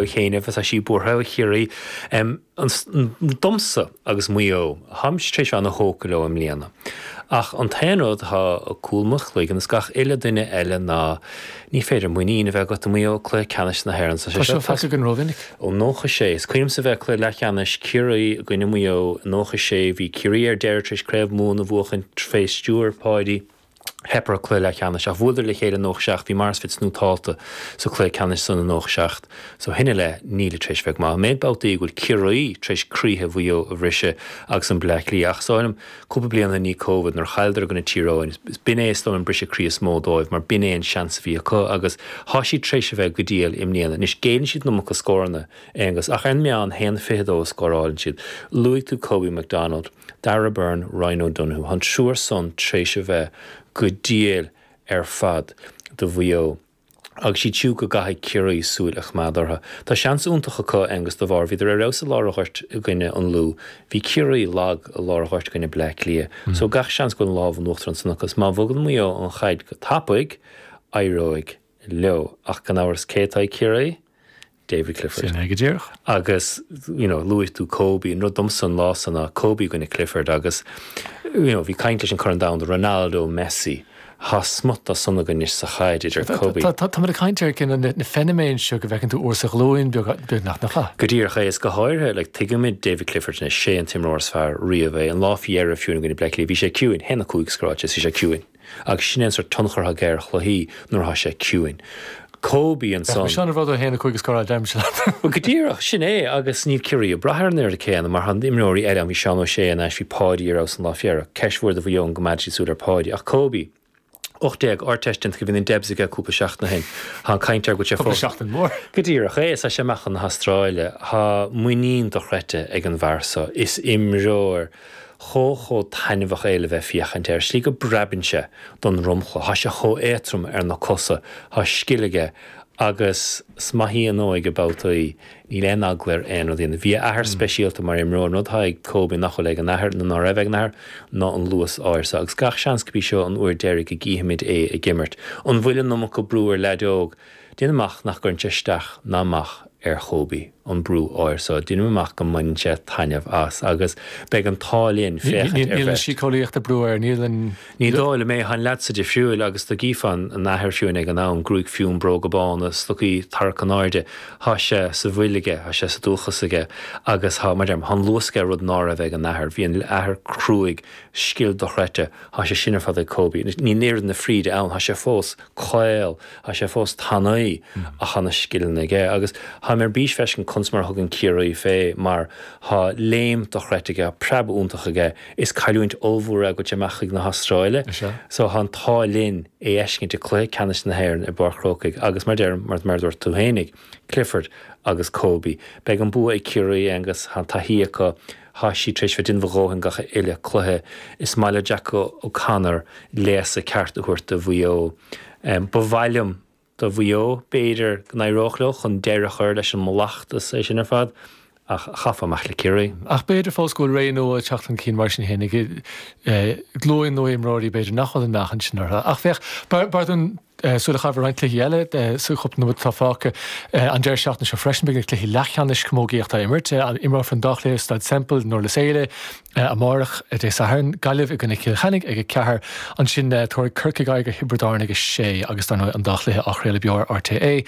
Ó Chéinneadh, Tá sí buartha ó Chiarraí domsa agus Maigh Eo. Táimse tar éis bheith ana thógtha leo i mbliana. Ach an t-aon rud atá ag cúl mo chloigeann is gach uile duine eile ná ní féidir muinín a bheith agat i Maigh Eo i cluiche ceannais na hÉireann. Tá sé feicthe againn rómhinic. Ó 96. Is cuimhin liomsa a bheith ag cluiche leathcheannais Chiarraí i gcoinne Maigh Eo i 96. Bhí Ciarraí ar deireadh tar éis Craobh Mumhan a bhuachan fé stiúir Páidí. Theip orthu cluiche leathcheannais ach bhuaileadar le chéile 97, bhí Maurice Fitz nótáilte sa cluiche ceannais san i 97 so ó shin i leith nílid tréis bheith go maith. An méid babhtaí go bhfuil Ciarraí tréis croíthe Mhaigh Eo a bhriseadh agus an Bleá Cliath ach is dóigh liom cúpla bliain i ndiaidh Covid nuair a chailleadar i gcoinne Tír Eoghain b'in é is dóigh an briseadh croí is mó dóibh mar b'in é an seans a bhí acu agus thá siad tréis a bheith go diail i mbliana. Anois géilleann siad iomarca scóranna, Aonghus, ach ar an meán haon fiche dó a scóráileann siad. Luaigh tú Kobe McDonald. Darragh Beirne, Ryan O'Donoghue, an triúr san tréis a bheith go diail ar fad do Mhaigh Eo agus is iad siúd go gcaithfidh Ciarraí súil a choimeád orthu. Tá seans iontach acu, Aonghus, de bharr bhíodar ar fheabhas i lár an ghoirt i gcoinne an Lú. Bhí Ciarraí lag i lár an ghoirt i gcoinne Bleá Cliath. So gach seans go bhfuil an lámh in uachtar ansan acu. Má bhogann Maigh Eo an chaid go tapaidh, éireoidh leo. Ach gan amhras cé atá ag Ciarraí? David Clifford. Sin é go díreach. Agus, you know, luaigh tú Kobe, an rud domsa an lá san ná Kobe i gcoinne Clifford agus, you know, bhí caint leis an Corn Domhanda, Ronaldo, Messi, tá smut as san againn anois sa chaid idir Kobe. Tá, táimid ag caint ar cinn na, na feiniméin seo go bhfeiceann tú uair sa ghlúin beag, beag nach, nach ea? Go díreach é, is go háirithe, like, tuigimid David Clifford anois, 'sé an t-imreoir is fearr riamh é, an lá fé dheireadh fiú i gcoinne Bleá Cliath bhí sé ciúin, a haon a cúig scóráilte is bhí sé ciúin. agus sin é an sórt tionchair atá aige ar chluichí nuair atá sé ciúin. Kobe an Bheadh mé san. sin an rud a haon a cúig scór adeim, sin leat. Bhuel, go díreach, sin é, agus níl Ciarraí ag brath air an oiread céanna mar tá imreoirí eile ann, bhí Seán Ó Sé thar n-ais, bhí Páidí ar fheabhas an lá fé dheireadh. Ceist mhór do Mhaigh Eo go gcoimeádfaidh siad súil ar Páidí, ach Kobe, 18, Ardteist déanta bhí na Debs aige cúpla seachtain ó shin, tá an chaint air go bhfuil sé Cúpla fós. seachtain mhór. Go díreach é, is tá sé amach chun na hAstráile, tá muinín dochreidte ag an bhfear so, is imreoir. chomh, chomh taitneamhach é le bheith féachaint air, slí go bpreabann sé don dromchla, tá sé chomh éatrom ar na cosa, tá scil aige agus 's maith í an óige babhtaí, níl aon eagla air aon rud a dhéanamh. Bhí a athair speisialta mar imreoir, an rud atá ag Kobe nach bhfuil ag an athair, nó ná raibh ag an athair, ná an luas áirithe seo, agus gach seans gurb í seo an uair deiridh go gcífimid é ag imirt. An bhfuil an iomarca brú ar leaid óg? Déanaim amach nach gcuireann sé isteach ná amach ar Kobe, an brú áirithe so. Déanaim amach go mbaineann sé taitneamh as agus beidh an t-ádh linn féachaint ar bheirt. Níl síceolaíocht ag brú air, níl an. Ní dóigh liom é. Tá an leaid so difriúil agus dá gcífeá an athair fiú ag an am, gruaig fionn, bróga bána, stocaí tarraicthe in airde. Tá sé sa bhfuil aige, tá sé sa dúchas aige agus tá, mar deirim, tá an luas aige rud ná raibh ag an athair. Bhí an athair cruaidh, scil dochreidte. Tá sé sin ar fad ag Kobe. Níl oiread na fríde ann, tá sé fós. caol. Tá sé fós tanaí ach tá na scileanna aige agus táim ar bís feiscint conas mar a thugann Ciarraí fé mar tá léim dochreidte aige, tá preab iontach aige. Is cailliúint ollmhór é ag dul amach chun na hAstráile so tá an t-ádh linn é a fheiscint i cluiche ceannais na hÉireann i bPáirc an Chrócaigh agus mar deir mar mar dúirt tú féinig Clifford agus Kobe. Beidh an bua ag Ciarraí, Aengus, tá an taithí acu, Tá siad tar éis bheith ag déanamh a dhóthain gach uile cluiche. Is maith le Jack O'Connor léasadh ceart a thabhairt do Mhaigh Eo. Ba mhaith liom do Mhaigh Eo, b'fhéidir go n-éireodh leo chun deireadh a chur leis an mallacht, is é sin ar fad, ach chaithfeá imeacht le Ciarraí. Ach b'fhéidir fós go bhfuil ré nua ag teacht chun cinn mar sin féin ag glúin nua imreoirí b'fhéidir nach bhfuil an meáchan sin orthu. Ach féach, b'fhearr dúinn Súil a chaitheamh ar roinnt cluichí eile sa chúpla nóiméad atá fágtha an deireadh seachtaine seo freisin. Beidh na cluichí leathcheannais camógaíochta á imirt. Imreofar an dá chluiche i Staid Semple, i nDurlas Éile, amárach, Dé Sathairn, Gaillimh i gcoinne Chill Chainnigh ag a ceathair. Ansin tabharfaidh Corcaigh aghaidh ar Thiobraid Árann ag a sé agus, dar ndóigh, an dá chluiche á chraoladh beo ar RTÉ.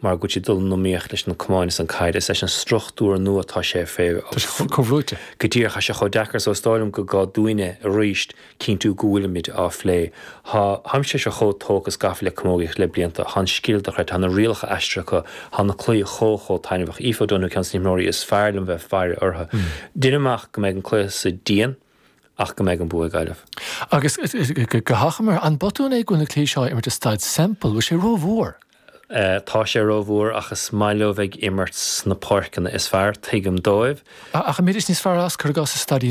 mar go dtí dul in iomaíocht leis na cumainn is an caid is leis an struchtúr nua tá sé fé tá sé chomh comhbhrúite go díreach tá sé chomh deacair so is dóigh liom go gá dúinne arís cinntiú go bhfuilimid á phlé tá táimse so chomh tógtha is gafa le camógaíocht le blianta tá an scil dochreidte tá na rialacha aistrithe acu tá na cluichí chomh chomh taitneamhach Aoife Donohue ceann de na himreoirí is fearr liom bheith ag faire orthu deinim amach go mbeidh an cluiche san dian ach go mbeidh an bua ag Gaillimh. Agus go hachomair, an botún é go bhfuil na cluichí seo á imirt i Staid Semple? Bhfuil sé ró-mhór? Tá sé rómhór ach is maith leo bheith ag imirt sna páirceanna is fearr, tuigim dóibh. Ach an mbeidís níos fearr as cuir i gcás sa staid í.